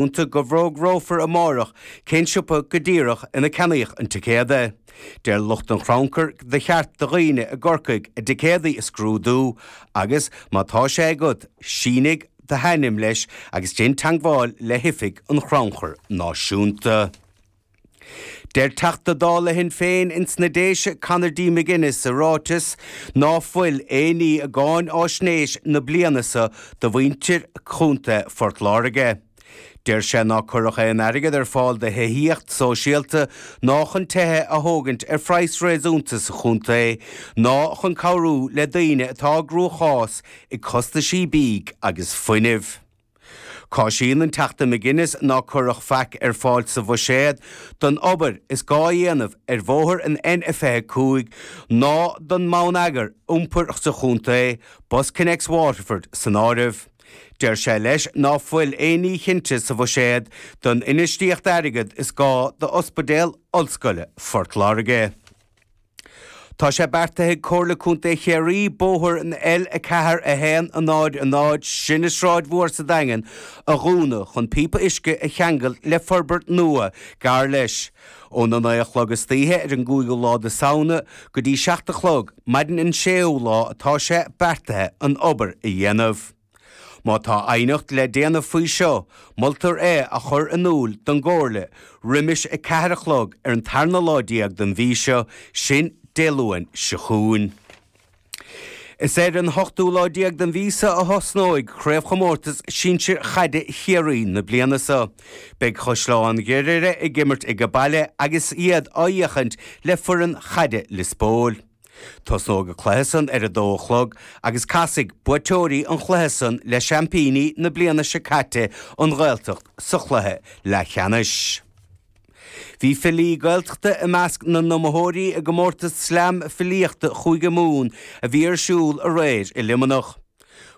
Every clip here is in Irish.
iúnta go bhfógrófar amáireach cén siopa go díreach ina ceannaíodh an ticéad. Deir lucht an chrannchuir gur cheart do dhaoine i gCorcaigh a dticéadaí a scrúdú agus, má tá sé agat, sínigh do hainm leis agus déan teagmháil le hOifig an Chrannchuir Náisiúnta. Deir Teachta Dála Shinn Féin ins na Déise Conor D McGuinness sa ráiteas ná fuil aon ní i gcáinaisnéis na bliana so do mhuintir Chontae Phort Láirge. Deir sé ná cuireadh aon airgead ar fáil do thithíocht sóisialta ná chun tithe a thógaint ar phraghas réasúnta sa chontae ná chun cabhrú le daoine atá i gcruachás ag costaisí bídh agus fuinnimh. Cásaíonn an Teachta McGuinness ná cuireadh faic ar fáil sa Bhuiséad don obair is gá a dhéanamh ar bhóthar an N25 ná don mbonneagar iompair sa chontae, BusConnects Waterford san áireamh. Deir sé leis ná fuil aon ní chinnte sa Bhuiséad don infheistíocht airgead is gá d'Ospidéal Ollscoile Phort Láirge. Tá sé beartaithe ag Comhairle Contae Chiarraí bóthar an L4100, sin an tSráid Mhór sa Daingean, a dhúnadh chun píopa uisce a cheangailt le forbairt nua gar leis, ón 9 a chlog istoíche ar an gcúigiú lá de Samhna go dtí 7 a chlog maidin an séú lá atá sé beartaithe an obair a dhéanamh. Má tá aighneacht le déanamh faoi seo, moltar é a chur in iúl don gComhairle roimis a ceathair a chlog ar an tarna lá déag den mhí seo, sin Dé Luain seo chugainn. Is ar an ochtú lá déag den mhí seo a thosnóidh craobhchomórtas sinsir chaide Chiarraí na bliana seo. Beidh Caisleán Ghriaire ag imirt age baile agus iad á fhéachaint le foireann chaide Lios Póil. Tosnóidh an cluiche san ar 2 a chlog agus casfaidh buaiteoirí an chluiche san le seaimpíní na bliana seo caite, An Ghaeltacht, sa chluiche leathcheannais. Bhí filí Gaeltachta i measc na n-iomaitheoirí i gcomórtas Slam Filíochta Chúige Mumhan a bhí ar siúl aréir i Luimneach.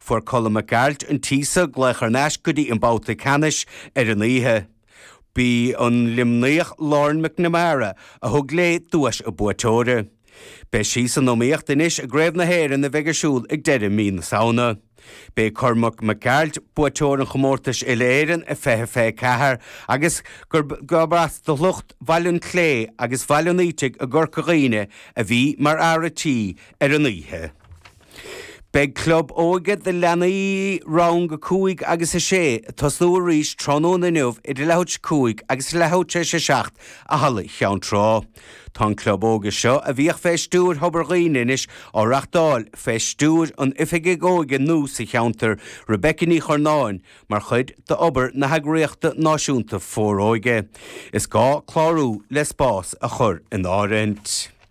Fuair Colm Mac Gearailt, An tÍosa, glaoch thar n-ais go dtí an babhta ceannais ar an oíche. B'í an Luimníoch Lauren McNamara a thug léi duais an bhuaiteora. Beidh sí san iomaíocht anois i gCraobh na hÉireann a bheidh ar siúl ag deireadh mí na Samhna. B'é Cormac Mac Gearailt buaiteoir an chomórtais Uile-Éireann i 2024 agus gurb as do shliocht Bhaile an tSléibhe agus Bhaile an Fhaoitigh i gCorca Dhuibhne a bhí mar fhear a' tí ar an oíche. Beidh club óige do leanaí rang 5 agus 6 ag tosnú arís tráthnóna inniu idir leath tar éis 5 agus leath tar éis 7 i halla Cheann Trá. Tá an club óige seo, a bhíodh fé stiúir Thobar Dhuibhne anois, á reachtáil fé stiúir an oifigig óige nua sa cheantar, Rebecca Ní Churnáin, mar chuid d'obair na heagraíochta náisiúnta Foróige. Is gá clárú le spás a chur in áirithint.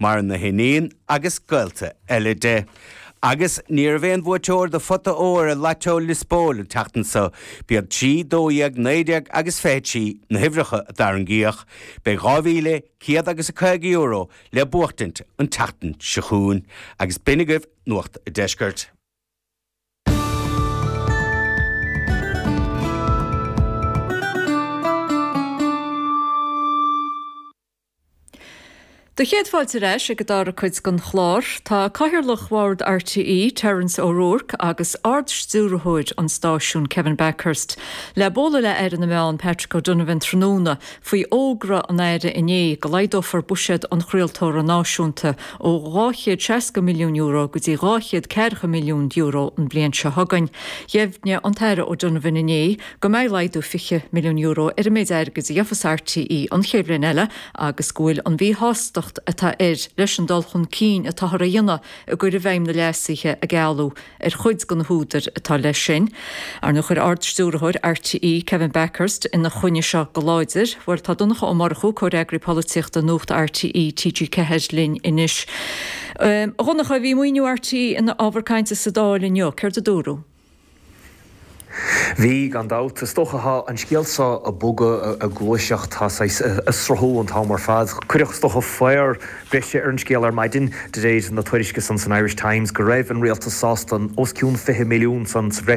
Maireann a hiníon agus gaolta eile di. Agus ní raibh aon bhuaiteoir de phota óir i Lotto Liospóil an tseachtain seo. B'iad trí, dó dhéag, naoi déag agus fiche trí na huimhreacha a tarraingíodh. Beidh dhá mhíle, céad agus caoga euro le buachtaint an tseachtain seo chugainn. Agus b'in agaibh Nuacht a' Deiscirt. Do chéad fáilte ar ais ag an dara cuid den chlár. Tá Cathaoirleach Bhord RTÉ, Terence O'Rourke, agus Ard-Stiúrthóir an stáisiúin, Kevin Bakhurst, le bualadh le hAire na Meán, Patrick O'Donovan, tráthnóna faoi fhógra an Aire inné go laghdófar buiséad an chraoltóra náisiúnta ó €260 milliún go dtí €240 milliún an bhliain seo chugainn. Dheimhnigh an tAire O'Donovan inné, go mbeidh laghdú €20 milliún ar an méid airgid a gheofas RTÉ an chéad bhliain eile agus go bhfuil an mhíshástacht atá air leis an dul chun cinn atáthar a dhéanamh i gcur i bhfeidhm na leasuithe a gealladh ar chuid de na húdair atá leis sin. Ar ndóigh chuir Ard-Stiúrthóir RTÉ, Kevin Bakhurst, ina choinne seo go láidir, bhuel, tá Donncha Ó Murchú, Comhfhreagraí Polaitíochta Nuacht RTÉ, TG4, linn anois. A Dhonncha, bhí maoiniú RTÉ ina ábhar cainte sa Dáil inniu. Céard a dúradh? Bhí, gan dabht. Is dócha tá an scéal seo ag bogadh ag gluaiseacht. Tá sé saghas ag sruthú an t-am ar fad. Cuireadh, is dócha, faobhar breise ar an scéal ar maidin, de réir na tuairisce san san Irish Times, go raibh an rialtas sásta os cionn 20 milliún san sa bhreis,